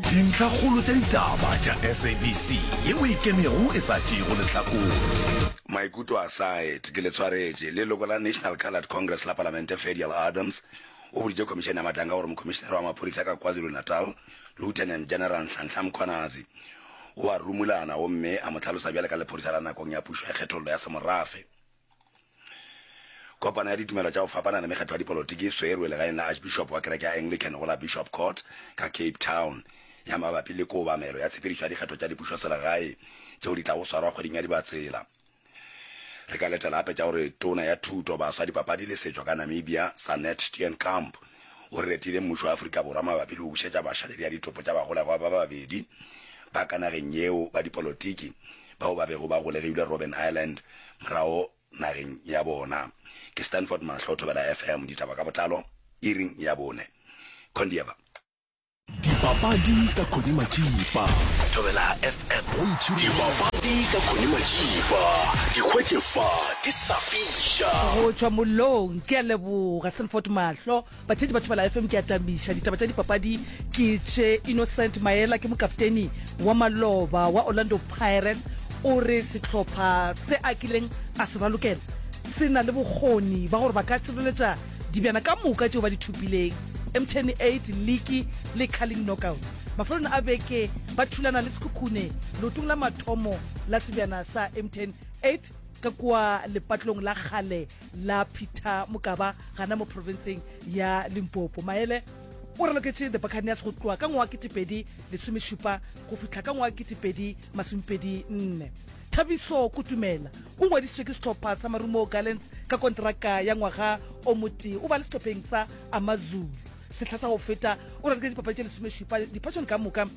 Dintlhakgolo tša ditaba tša SABC ye o e kemego e sa tšeego lehlakore. Maikutlo a Said ke letshwaretše. Leloko la National Coloured Congress la Palamente Fadial Adams o boditše Khomišene ya Matlanka gore Mokhomišenare wa Maphodisa ka KwaZulu-Natal Lieutenant General Nhlanhla Mkhwanazi o a rumulana gomme a mo hlalosa bjale ka lephodisa la nakong ya pušo ya kgethollo ya semorafe. Kopano ya ditumelo tša go fapana le mekgatlo ya dipolotiki e swerwe legaeng la Archbishop wa kereke ya Anglican go la Bishop Court ka Cape Town ya mabapi le koobamelo ya tshepedišo ya dikgetho tša dipušoselegae tšeo di tlago swarwa kgweding ya Dibatsela. Re ka letela gape tša gore Tona ya Thuto, Baswa, Dipapadi le Setšo ka Namibia, Sanet Steenkamp, o retile mmušo wa Afrika Borwa mabapi le go bušetša basha ledi ya ditopo tša bagolegwa ba babedi ba ka nageng yeo ba dipolotiki bao ba bego ba golegilwe Robben Island, morago nageng ya bona. Ke Stanford Mahlo, Thobela FM, ditaba ka botlalo iri ya bone. Kondieba. Dipapadi ka Connie Matšipa. Thobela FM, dipapadi ka Connie Matšipa. Di hwetše fa, di sa fiša. Go tšwa mollong, ke a leboga Stanford Mahlo. Batheetši ba Thibela FM ke a tamiša. Ditaba tša dipapadi ke tše Innocent Maela ke mokapteni wa maloba wa Orlando Pirates o re sehlopha se a kileng a se ralokela se na le bokgoni ba gore ba ka tšireletša dibjana ka moka tšeo ba di thopileng emtn 8 liki le carling knockout. Mafelong a beke ba thulana le Sekhukhune leotong la mathomo la sebjana sa emtn 8 ka kua lepatlong la kgale la peter mokaba gana mo profenseng ya limpopo maele o raloketse the buccaneers go tloa ka ngwaga ketepedi lesomešupa go fihla ka ngwaga ketepedi masomepedi nne thabiso kutumela o ngwadisitswe ke sehlopha sa marumo gallants ka kontraka ya ngwaga o mote o ba le sehlopheng sa amazulu sehla sa go feta o raloketse dipapadi tše lesomešupa dipatšone ka moka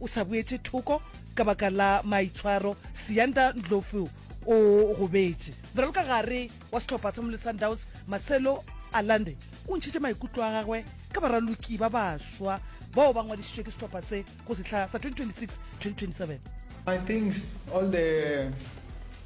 o sa boetše thoko ka baka la maitshwaro seanda ndlovu o gobetše ralo ka gare wa sehlopha sa mole sundowns marcelo alande o ntšhitše maikutlo a gagwe ka baraloki ba baswa bao ba ngwadišitšwe ke sehlopha se go sehla sa 2026-2027 I think all the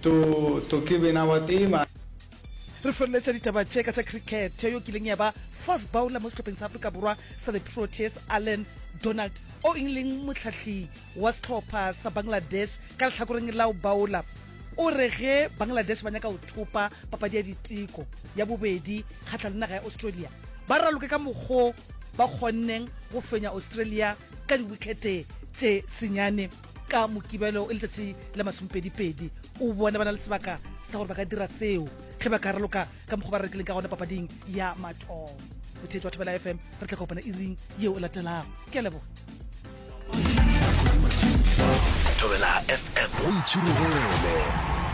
To, to ke bena wa tee man. Re feleletša ditaba tše ka tša cricket yo kileng ya ba fast bowler mo sehlopheng sa Afrika Borwa sa the Proteas, Allan Donald, o ileng mohlahli wa sehlopha sa Bangladesh ka lehlakoreng la go bowla, o re ge Bangladesh ba nyaka go thopa papadi ya diteko ya bobedi kgahla le naga ya Australia, ba raloke ka mokgo ba kgonneng go fenya Australia ka diwikhete tše senyane. ka mokibelo e letšatši la masomepedipedi o bona ba na le sebaka sa gore ba ka dira seo ge ba ka raloka ka mokgwa ba rekileng ka gona papading ya matong botheetsi wa thobela fm re tla kopana e ring yeo e latelago ke a leboga thobela fm o ntšhirogele